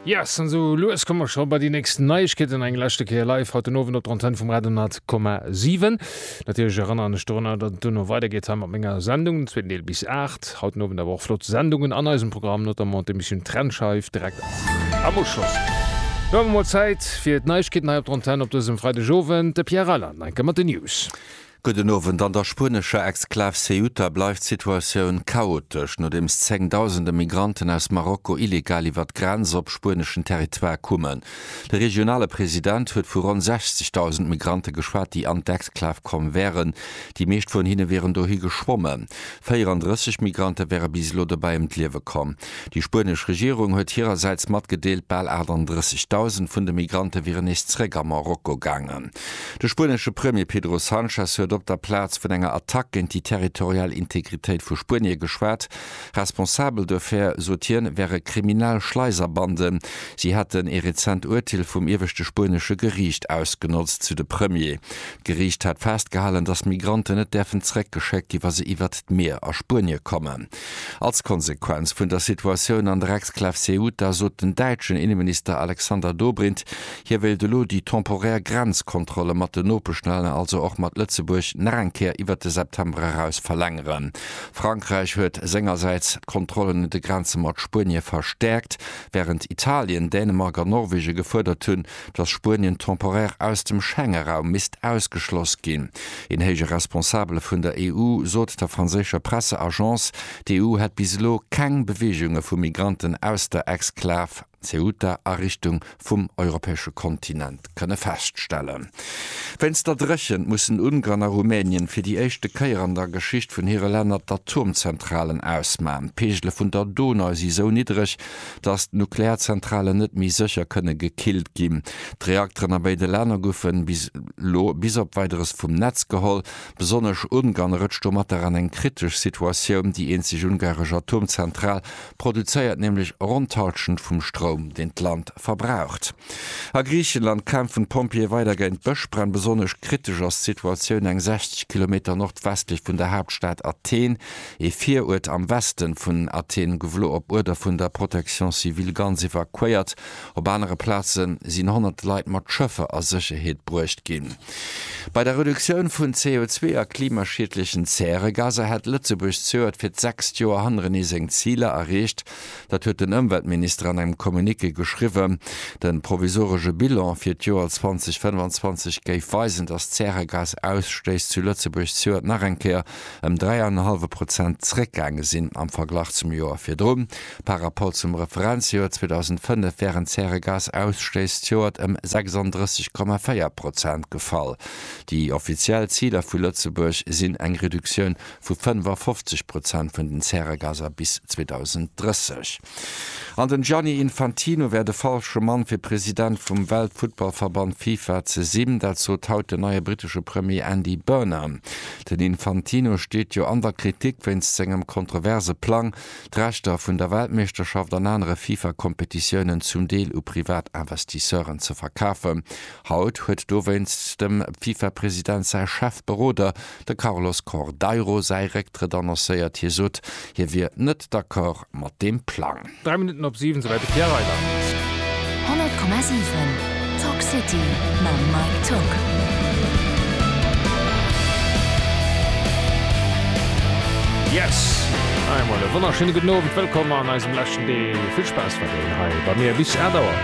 Yes, an esou lues komme mer scho bei déi nächst Neiegkeeten. Eng leschte Kéier live haut den Owend op der Antenne vum Radio 100,7. Natierlech erënneren ech dorunner, datt et duerno weidergeet hei mat menger Sendung, den zweeten Deel bis 8. Haut den Owend awer och flott Sendungen an eisem Programm, notamment d'Emissioun Trennscheif direkt am Uschloss. Lo hu mer mol Zäit fir d'Neiegkeeten hei op der Antenne op dësem Freidegowend. De Pierre Reyland, Enke, mat den News. Gudden Owend, An der spuenescher Exklav Ceuta bleift d'Situatioun chaotesch, nodeems zéngdausende Migranten aus Marokko illegal iwwer d'Grenz op spueneschen Territoire kummen. De regionale President huet vu ronn 60.000 Migrante geschwat, déi an d'Exklav komm wären. Déi meescht vun hinne wieren dohi geschwommen. 34 Migrante wäre bis elo dobäi ëm d'Liewe komm. Déi spuenesch Regierung huet hirersäits matgedeelt, bal 38.000 vun de Migrante wieren nees zeréck a Marokko gaangen. De spuenesche Premier Pedro Sanchez huet op der Plaz vun enger Attack géint déi territorial Integritéit vu Spuenie geschwat. Responsabel duerfir, sot hien, wäre kriminell Schleiserbanden. Si hätten ee rezent Urteel vum ieweschte spuenesche Geriicht ausgenotzt, sou de Premier. D'Geriicht hätt festgehalen, datt Migranten net däerfen zeréckgeschéckt gi wa se iwwert d'Mier a Spuenie kommen. Als Konsequenz vun der Situatioun an der Exklav Ceuta sot den däitschen Inneminister Alexander Dobrindt, hie wéilt elo déi temporär Grenzkontrolle mat den Nopeschlänner, also och mat Lëtzebuerg, nach eng Kéier iwwert de September eraus verlängeren. Frankräich huet sengersäits d'Kontrollen un de Grenze mat Spuenie verstäerkt, wärend Italien, Dänemark an Norwegen gefuerdert hunn, dass Spuenien temporaire aus dem Schengeraum misst ausgeschloss ginn. Een héije Responsabele vun der EU sot der franséischer Presseagence, d'EU hätt bis elo keng Beweegunge vu Migranten aus der Exklav Ceuta a Richtung vum europäesche Kontinent kënne feststellen. Wéinst der Dréchent mussen Ungarn a Rumänien fir déi éischte Kéier an der Geschicht vun hire Länner d'Atomzentralen ausman. D'Peegele vun der Donau si sou niddreg, datt d'Nuklearzentralen net méi sécher kënne gekillt ginn. D'Reakteren a béide Länner goufen bis elo bis op Weideres vum Netz geholl. Besonnesch Ungarn rëtscht domatter an eng kritesch Situatioun. Déi eenzeg ungaresch Atomzentral produzéiert nämlech ronn d'Halschent vum Stroum, deen d'Land verbraucht. A Griichenland kämpfen d'Pompjeeë weider géint Bëschbränn. Besonnesch kritesch ass d'Situatioun eng 60 Kilometer nordwestlech vun der Haaptstad Athen. ee Viruert am Westen vun Athen gouf elo op Uerder vun der Protection civile ganz evakuéiert. Op anere Plaze sinn honnerte Leit mat Schëffer a Sécherheet bruecht ginn. Bei der Reduktioun vun CO2 a klimaschiedlechen Zäregaser hätt Lëtzebuerg zögert fir d'sechst Joer hannerenee seng Ziler erreecht. Dat huet den Ëmweltminister an engem Communiqué geschriwwen. De provisoresche Bilan fir d'Joer 2025 géif weisen, datt d'Zäregasausstéiss zu Lëtzebuerg zögert nach eng Kéier ëm dräi an en hallwe Prozent zeréckgaange sinn am Verglach zum Joer virdrun. Par Rapport zum Referenzjoer 2005 wären d'Zäregasausstëiss d'Joert ëm 36,4 Prozent gefall. Déi offiziell Ziler vu Lëtzebuerg sinn eng Reduktioun vu 55 Prozent vun den Zäregaser bis 2030. An den Gianni Infantino wär de falsche Mann fir President vum Weltfuttballverband Fifa ze sinn. Dat sot haut den neie brittesche Premier Andy Burnham. Den Infantino steet jo an der Kritik wéinst sengem kontroverse Plang, d'Rechter vun der Weltmeeschterschaft an anere Fifa-Kompetitiounen zum Deel u privat Investisseuren ze verkafen. Haut huet dowéinst dem Fifa-President säi Chefberoder, de Carlos Cordeiro säi Récktrëtt annoncéiert. Hie sot, hie wier net d'accord. mat deem Plang. Dräi Minutten op siwen, esouwäit de Pierre Reyland. 100,7 Talk City mam Mike Tock. Yes! Eemol e wonnerschéine gudden Owend, wëllkomm an eisem leschten Deel. Vill Spaass mat deenen hei bei mir bis 8 Auer.